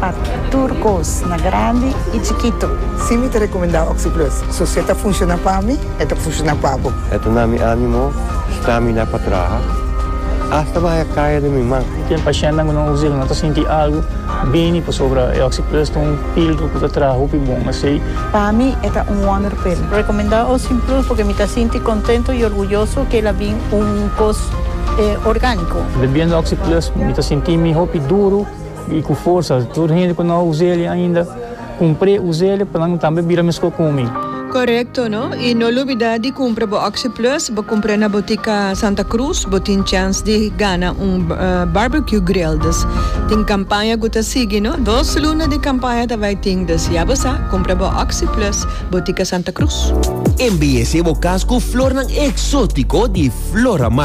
Pa tur kos, na grandi i chikitu. Si mi ta rekomendá Oxi-Plus, so si e ta funshoná pa mi, e ta funshoná pa bo. E ta na mi ánimo stramina pa traha, asta bahai e kaya den mi man. Ken pashentenan ku nan usa el no ta sinti algu bini pasobra e Oxi-Plus ta un píldru ku ta traha hopi bon. Asei. Pa mi e ta un wonder pil. Rekomendá Oxi-Plus purke mi ta sinti kontentu i orguyoso ku el a bin un kos orgániko. Bebiendo Oxi-Plus mi ta sinti mi hopi duru. I ku forsa tur hende ku no a usa eli ainda, kumpr'é usa eli pa nan tambe bira meskor ku mi. Korekto no? I no lubidá di kumpra bo Oxi Plus, bo kumpr'é na Botika Santa Cruz, bo tin chans di gana un Barbecue Grill. Dus tin kampaña ku ta sigui no, dos luna di kampaña ta bai tin, dus ya bo sa, kumpra bo Oxi Plus, Botika Santa Cruz. Embellece bo cas cu flornan exótico di Floramar.